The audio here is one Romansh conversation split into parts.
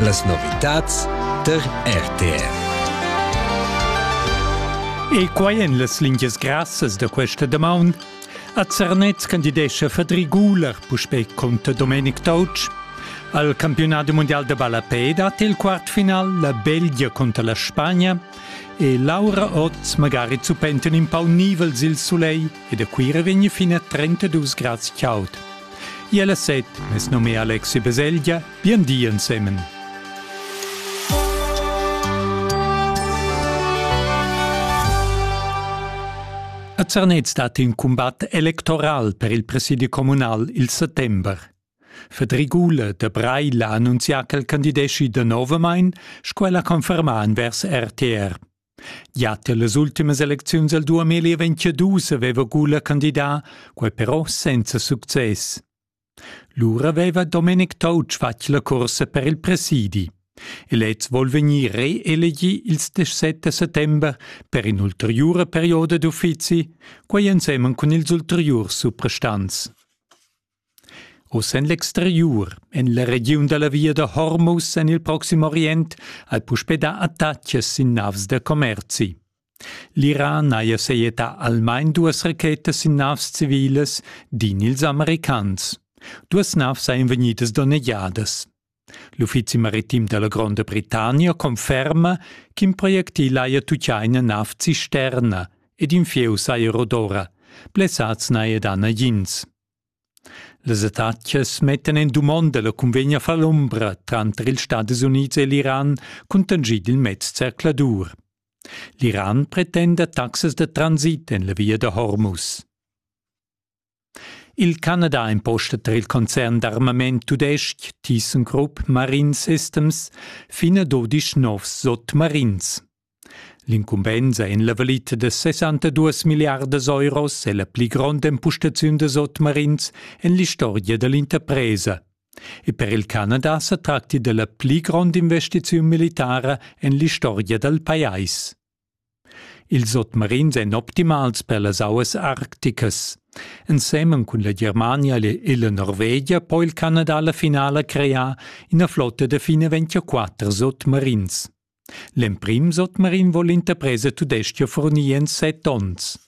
Las novitads tar RTR. E quai en las lingias grassas da questa damaun. A Zernez candidescha Fadri Guler puspè conter Domenic Touch. Al campionat mondial da ballapè dat il quartfinal la Belgia conter la Spagna e Laura Oz magari zuppent in pau nivels il sulegl e da Cuira vegn fin a 32 grads chaud. Iel a set, mes num è Alexi Beselgia, bien di ensemen. A Zernez dat in combat electoral per il presidi communal il settember. Fedrigule de Breil ha annunzià ch'el candideschi de novamain, sco ella conferma envers RTR. Gia tier las ultimas elecziuns el 2022 aveva Gula candidà, quei però senza success. Lura aveva Domenic Touch fatg la cursa per il presidi. E lez vuol vegnir reelegi ils 17 settember per in'ulteriura perioda d'uffizi, quei ensemen cun ils ulteriurs suprastants. Oz en l'exteriur, en la regiun da la via da Hormuz en il Proxim Orient, hai puspè dà attacas sin navs da commerzi. L'Iran haja sajettà almain duas rachetas sin navs civilas, din ils Americans. Duas navs sajan vegnidas donnegiadas. L'uffizi maritim da la Gronda Britannia conferma ch'in projectil haja tutgà ina nav cisterna ed in fieu saja rodora. Blessads n'haja dà nagins. Las attacas mettan en dumonda la cunvegna fall'umbra tranter ils Stadis Unids e l'Iran, cuntanschì dil mez zercladur. L'Iran pretenda taxas da transit en la via da Hormuz. Il Canada imposta tar il concern d'armament tudestg ThyssenKrupp Marine Systems fin a 12 novs sotmarins. L'incumbensa en la valita da 62 milliardas euros è la pli gronda empustaziun da sotmarins en l'istorgia da l'interpresa. E per il Canada sa tracti della pli grond investiziun militara en l'istorgia dal pajais. Ils sotmarins èn optimals per las auas arcticas. Ensemen cun la Germania e la Norvegia po il Canada la finala crear ina flotta da fine 24 sotmarins. L'emprim sotmarin vol l'interpresa tudestga furnir en set onns.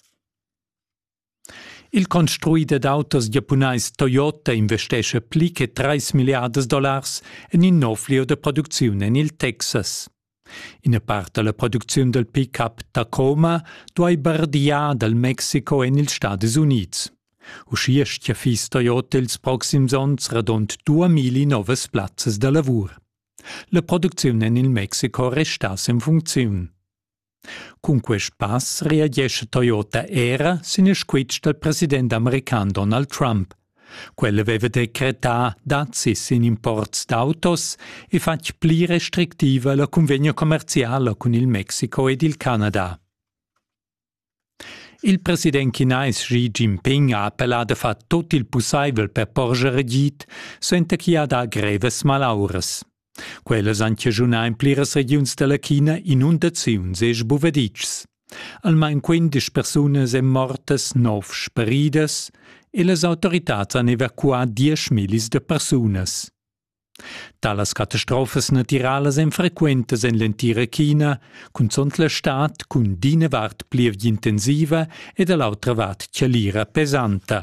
Il construider d'autos giapunais Toyota investescha pli che 3 milliardas dollars en in nov lieu da producziun en il Texas. Ina part da la producziun dal pick-up Tacoma duai bardiar dal Mexico en ils Stadis Unids. Uschia stia fiss Toyota ils proxims onns radund 2000 novas plazzas da lavur. La producziun en il Mexico resta sin funcziun. Cun quest pass reagesce Toyota era sin il squitsch dal president american Donald Trump. Quel aveva decretà dazis in imports d'autos e fatg pli restrictiva la cunvegna commerziala cun il Mexico ed il Canada. Il president chinais Xi Jinping ha appellà da far tut il pussaivel per porscher agid, suenter ch'i ha dà grevas malauras. Quellas han chaschunà en pliras regiuns da la China inundaziuns e sbuvaditschs. Almain quindesch persunas èn mortas, nov sparidas, e las autoritads han evacuà diesch millis da persunas. Talas catastrofas natiralas èn frequentas en l'entira China, cunzunt la stad cun d'ina vart plievgia intensiva e da l'autra vart chalira pesanta.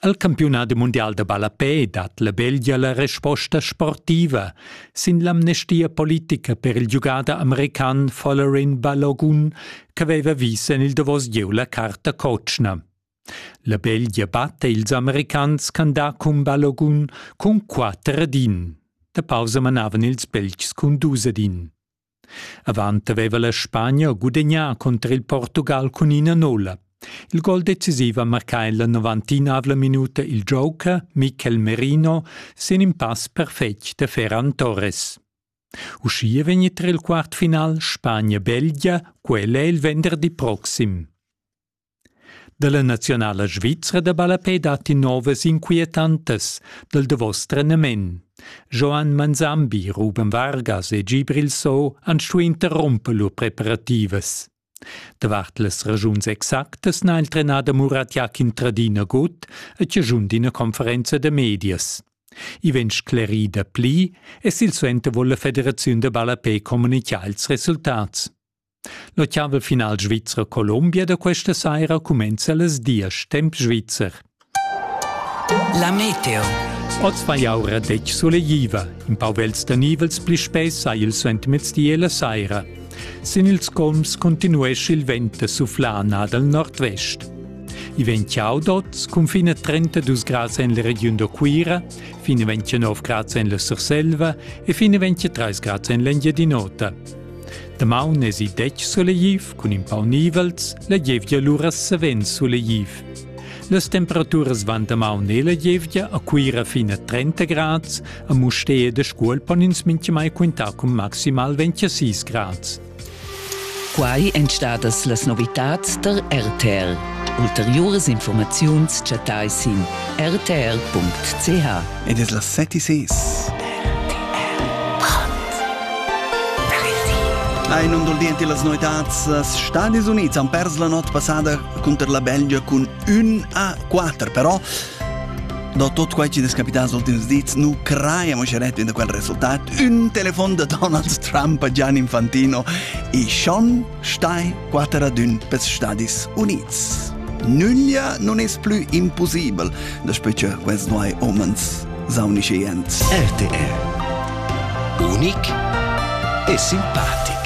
Al campiunat mundial da ballapè dat la Belgia la resposta sportiva sin l'amnestia politica per il giugader american Folarin Balogun ch'aveva vis en il davos gieu la carta cotschna. La beglia batta ils Americans ch'han dà cumbalogun cun quatter ed in. Da pausa manavan ils Beltgs cun dus ed in. Avant aveva la Spagna gudegnà cunter il Portugal cun ina nola. Il gol decisiv ha marcà en la novantinavla minuta il joker Mikel Merino sin in pass perfetg da Ferran Torres. Uschia vegn tra il quart final Spagna-Belgia, quella il venderdi proxim. Dalla naziunala svizra da ballapè datti novas inquietantas dal davos trenament. Joan Manzambi, Ruben Vargas e Gibril So han stuì interrumper lur preparativas. Davart las ragiuns exactas n'ha il trenader Murat Jakin tradina gut e tiagiun d'ina conferenza da medias. I vegn sclerì da pli e silsuenter vul la federaziun da ballapè communicar ils resultats. La chava final svizra Colombia da questa saira cumenza las dias temp svizzer. La meteo. Oz fa jaura detg sulegliva. In pau vels da nivels pli spess ha il suentermezdi e la saira. Sin ils colms continuesce il vent da suflana dal nord-vest. I vegn ciao d'oz, cun fin a 32 grads en la regiun da Cuira, fin a 29 grads en la Surselva e fin a 23 grads en l'Engiadin'Ota. Damaun esi detg sulegliv cun in pau nivels, la gievgia lura savens sulegliv. Las temperaturas van damaun e la gievgia a Cuira fin a 30 grads, a Mustér de Scuol pon ins mintgamai quintar cun maximal 26 grads. Quai èn stadas las novitads der RTL. Ulteriuras informaziuns chattai sin rtr.ch. ed es la setti ses. Ein um dal di las noetats, as Stadis Unids han pers la not passada cunter la Belgia cun 1 a 4, però da tot quai che è capitato negli ultimi dis, nu creiamo sceret in quel risultat. Un telefon da Donald Trump a Gian Infantino e Sean Stai quater ad ün pels Stadis Units. Nüglia non es plü impossibel, daspö che quels nuoi omens saunisce jent. RTR Unic e simpatic.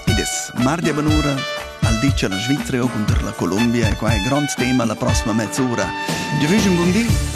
Ed es mardi a Banura, al dice la Svizzera conter la Colombia e qua è grond tema la prossima mezz'ora. Dir un bon di